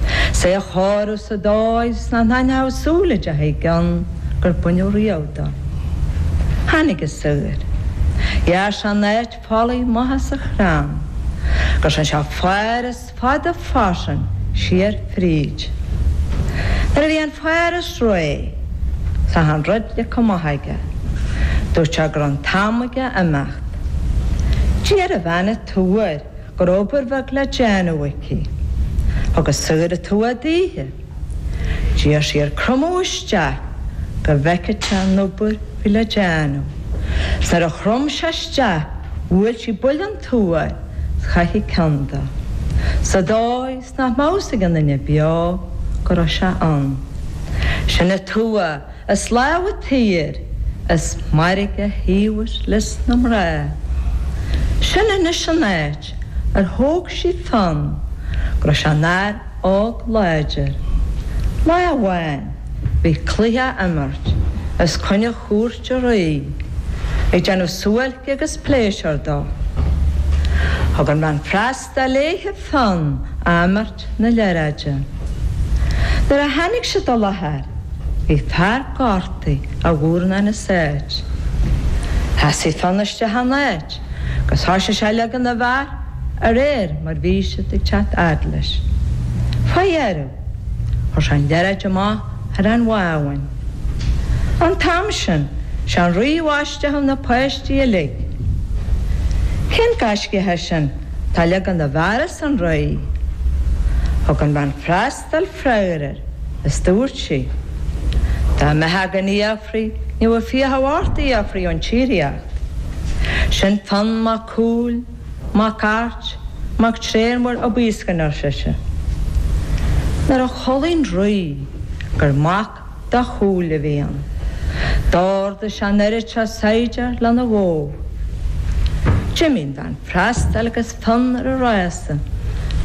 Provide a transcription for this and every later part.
'S é a chóiriú sa dóigh 's nach n-aithneochadh súil a d'fh éigean gur baineadh riamh dó. Tháinig an saor. Ghearr sé an áit folaigh maith sa chrann, go dtearn sé fáras fada fairsing siar fríd. Nuair a bhí an fáras réidh, 's achan rud leagtha amach aige. Dúirt sé go raibh an t-am aige imeacht. D'iarr an bhean an tua air. go raibh obair bheag le déanamh aici thug an saor an tua daoithe. D'iarr sí air cromadh isteach go bhfeicfeadh sé an obair bhí le déanamh. 'S nuair a chrom sé isteach bhuail sí buille den tua air 's chaith sí an ceann de, sa dóigh 's nach mbeadh fhios ag aon duine beo go raibh sé ann. Sin an tua! Is lámh an tsaoir is mairg a thaobhadh leis na mná. Sin anois an áit ar thóg sí Fionn go raibh sé ina fhear óg láidir. Lá amháin bhí cluiche á imirt os coinne chúirt an rí ag déanamh suáilce agus pléisiúir dó. Thug an bhean freastail. léithe Fionn a dh'imirt na liathróide, nuair a tháinig siad i láthair, bhí fear gortaithe a dhúrn ina seit. Sheasaigh Fionn isteach ina áit agus thoisigh sé ag leagan na bhfear a réir mar bhí siad ag teacht fhad leis. Fá dheireadh, chuir sé an liathróid amach ar an bhábhún. An t-am sin, sé an rí a isteach na páistí uilig. Cén gaiscíoch é sin atá ag leagan na bhfear arsa an Rí. Thug an bhean freastail freagar air is dúirt sí, Dá mbeitheá gan fhiafraí ní bheadh fiacha ort fhiafraí ón tír iad. Sin Fionn mac Cumhaill, mac Airt, mac Tréanmhóir Ó Baoiscne, arsa sise. Nuair a chualaigh an Rí gur mac. do Chumhall a bhí ann. D'ordaigh sé an oiread seo saighdiúr lena ghabháil. D'imigh an bhean freastail agus Fionn ar a rása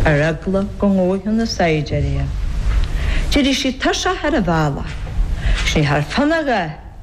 ar eagla go ngabhfadh na saighdiúirí é. D'éirigh sí tuirseach ar an bhealach, is ní thearn Fionn a dhath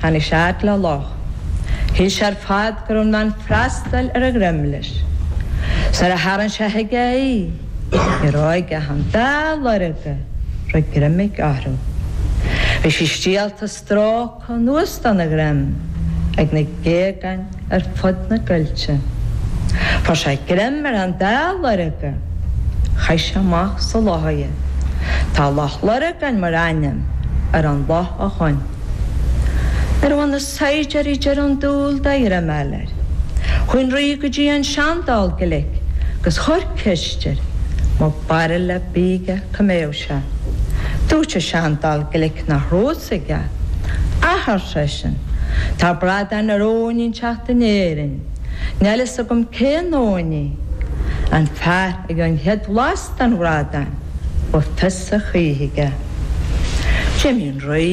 Tháinig sé fhad le loch. Shíl sé ar fad go raibh an bhean freastail ar a dhroim leis. 'S nuair a tharraing sé chuige í, ní raibh aige ach an dá lorga a raibh greim aige orthu. Bhí sí stiallta stróctha anuas dona dhroim ag na géagáin. ar fud na gcoillte. Fuair sé greim ar an dá lorga, chaith sé amach sa loch iad. Tá Loch Lurgan mar ainm ar an loch ó shin. Nuair a bhain na saighdiúirí deireadh dúil de ghreim a fháil air, chuaigh an rí go dtí an seandall glic agus chuir ceist air an raibh barúil ar bith aige. sé. Dúirt an seandall glic nach raibh a fhios aige. Ach ar seisean, Tá bradán ar abhainn inteacht in Éirinn. Níl a fhios agam cén abhainn í. An fear a gheobhaidh an chéad bhlas den bhradán, beidh fios a choíche aige. D'imigh an Rí.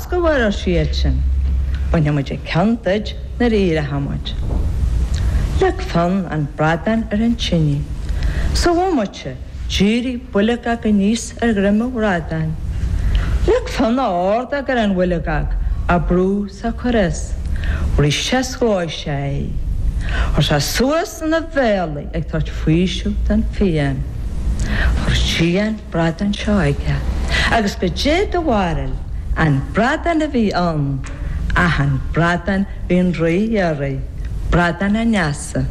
Go fóill, ar siadsan, bainfidh muid an ceann duit nuair a éireochaidh muid. Leag Fionn an bradán ar an tine. Sa bhomaite, d'éirigh boilgeog aníos ar dhroim an bhradáin. Leag Fionn a ordóg ar an bhoilgeog á brú sa cur is. Bhris sé is dhóigh sé í. Chuir sé suas ina bhéal í ag tabhairt faoiseamh don phian. Chuir sí an. bradán seo aige, agus goidé do bharúil an bradán a bhí ann, ach an bradán a bhí an rí a iarraidh, bradán an fheasa.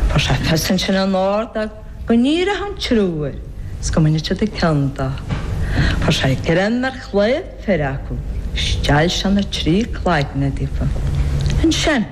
Fuair sé fios ansin ina ordóg go n-éireodh an triúr 's go mbainfeadh siad an ceann de. Fuair sé greim ar chlaíomh fir acu 's steall sé na trí cloigne díofa. Ansin.